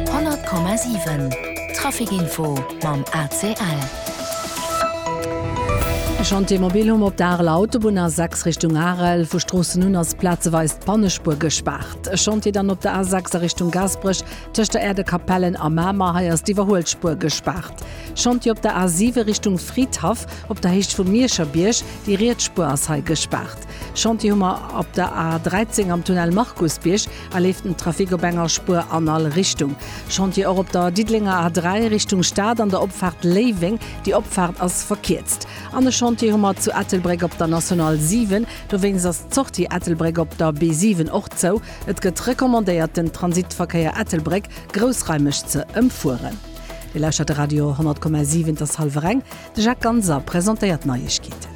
100,7 Trafic info mam ACL. E Chantier mobil hu mer op der Areler Autobunn, A6 Richtung Arel. Vu Stroossen un ass plazeweis d'Bannespuer gespaart. E Chantier dann op der A6 a Richtung Gaasperech, tëscht der Aire de Capellen a Mamer. Hei ass d'Iwwerhuelspuer gespaart. Chantier op der A7 Richtung Fridhaff, op der Héicht vum Mierscher Bierg. Déi riets Spuer ass hei gespaart. Chantier hu mer op der A13 am Tunnel Markusbierg. A leeft den Trafic op enger Spuer an all Richtung? Chantier och op der Diddelenger A3 Richtung Stad an der Opfaart Léiweng, déi Opfaart ass verkierzt. An e Chantier hu mer zu Ettelbréck op der National 7, dowéinst ass d'Sortie Ettelbréck op der B7 och zou. Et gëtt recommandéiert den Transitverkéier Ettelbréck groussraimeg ze ëmfueren. Dir lauschtert de Radio 100,7, et ass hallwer eng. De Jacques Ganser presentéiert d'Neiegkeeten.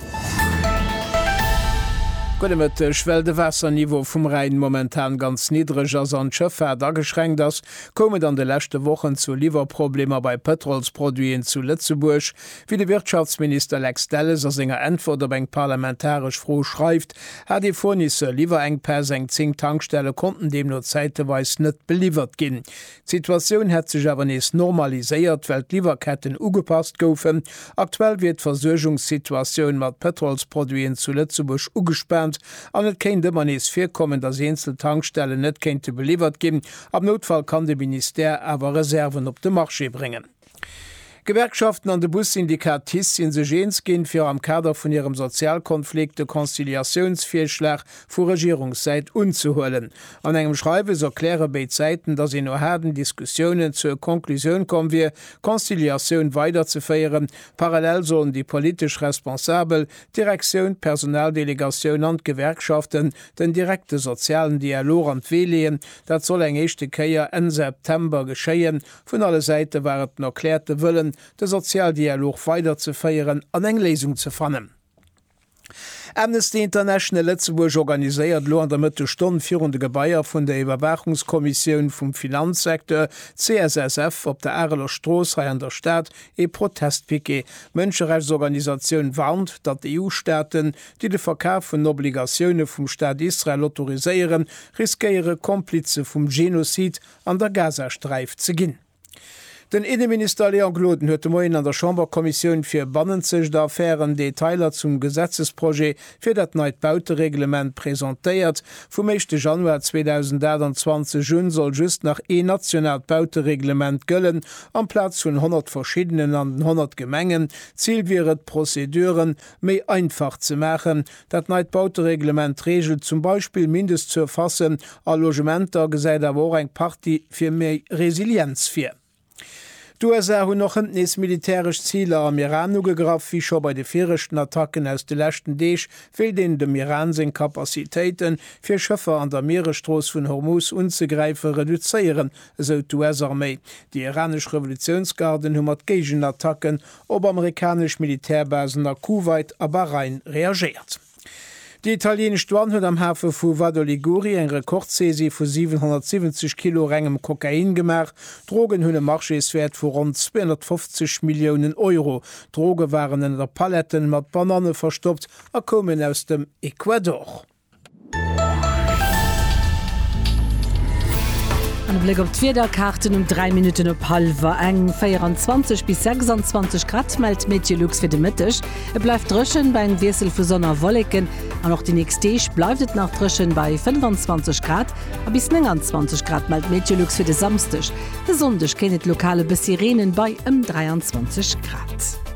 Gudde Mëtteg. Well de Waasserniveau vum Rhäin momentan ganz niddreg ass an d'Schëffaart ageschränkt ass, koum et an de leschte Wochen zu Liwwerproblemer bei Pëtrolsproduiten zu Lëtzebuerg. Wéi de Wirtschaftsminister Lex Delles a senger Äntwert op eng parlamentaresch Fro schreift, hat ee Fournisseur Liwwerenkpäss, eng 10 Tankstelle konnten deemno zäiteweis net beliwwert ginn. D'Situatioun hätt sech awer nees normaliséiert, well d'Liwwerketten ugepasst goufen. Aktuell wier d'Versuergungssituatioun mat Pëtrolsproduiten zu Lëtzebuerg ugespaant an et kéint ëmmer nees virkommen, datt eenzel Tankstellen net kéinte beliwwert ginn. Am Noutfall kann de Ministère awer Reserven op de Marché bréngen. D'Gewerkschaften an de Bussyndikat TICE si sech eens ginn, fir am Kader vun hirem Sozialkonflikt de Conciliatiounsvirschlag vu Regierungssäit unzehuelen. An engem Schreiwes erkläre béid Säiten, datt een no haarden Diskussiounen zur Conclusioun komm wier, d'Conciliatioun weiderzeféieren. Parallel sollen déi politesch Responsabel, d'Direktioun, d'Personaldelegatioun an d'Gewerkschaften den direkte sozialen Dialog an d'Wee leeën. Dat soll eng éischte Kéier Enn September geschéien. Vun alle Säite war et den erkläerte Wëllen, de Sozialdialog weiderzeféieren an eng Léisung ze fannen. Amnesty International Lëtzebuerg organiséiert elo an der Mëttesstonn virun de Gebaier vun der Iwwerwaachungskommissioun vum Finanzsecteur, CSSF, op der Areler Strooss hei an der Stad ee Protestpiquet. D'Mënscherechtsorganisatioun warnt, datt d'EU-Staaten, déi de Verkaf vun Obligatioune vum Staat Israel autoriséieren, riskéiere Komplize vum Genozid, an der Gazasträif ze ginn. Den Inneminister Léon Gloden huet de Moien an der Chamberkommissioun fir bannenzegt Affären Detailer zum Gesetzesprojet fir dat neit Bautereglement presentéiert. Vum éischte Januar 2028 un soll just nach een nationaalt Bautereglement gëllen, amplaz vun 100 verschiddenen an den 100 Gemengen. D'Zil wier et, d'Prozeduren méi einfach ze maachen, Dat neit Bautereglement reegelt zum Beispill Mindestsurfacen a Logementer, gesäit awer och eng Partie fir méi Resilienz vir. D'USA hunn och hënt nees militäresch Ziler am Iran ugegraff. Wéi scho bei de viregten Attacken aus de leschten Deeg, wéilt een dem Iran seng Capacitéite fir Schëffer an der Mieresstrooss vun Hormuz unzegräife reduzéieren, esou d'US-Arméi. Déi iranesch Revolutiounsgarden hu mat Géigenattacken op amerikanesch Militärbasen a Kuwait a Bahrain reagéiert. Déi italieenesch Douane huet am Hafe vu Vado Liguri eng Rekordsaisie vu 770 Kilo rengem Kokain gemaach. D'Drogen hunn e Marchéeswäert vu ronn 250 Milliounen Euro. D'Droge waren ënner Paletten mat Bananne verstoppt a koumen aus dem Ecuador. An e Bléck op d'Wiederkaarten um 3 Minutten op hallwer eng. 24 bis 26 Grad mellt Meteolux fir de Mëtteg. Et bleift dréchen bei engem Wiessel vu Sonn a Wolleken. An och déi nächst Deeg bleift et nach dréchen bei 25 Grad a bis 29 Grad mellt Meteolux fir de Samsdeg. De Sonndeg kéint et lokal e bëssi reenen bei ëm 23 Grad.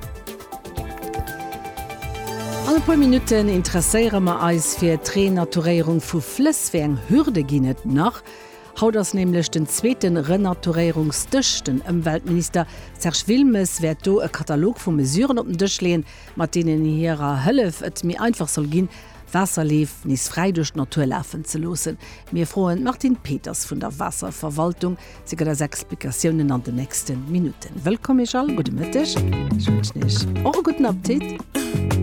All e puer Minutten interesséiere mer eis fir d'Renaturéierung vu Flëss. Wéi eng Hürde ginn et nach? Haut ass nämlech den zweete Renaturéierungsdësch. Den Ëmweltminister Serge Wilmes wäert do e Katalog vu Mesuren op den Dësch leeën, mat deenen hirer Hëllef et méi einfach soll ginn, Waasserleef nees fräi duerch d'Natur lafen ze loossen. Mir froen d'Martine Peters vun der Waasserverwaltung, Se gëtt eis Explikatiounen an den nächsten Minuten. Wëllkomm Iech all, gudde Mëtteg, ech wënschen Iech och e gudden Apptit.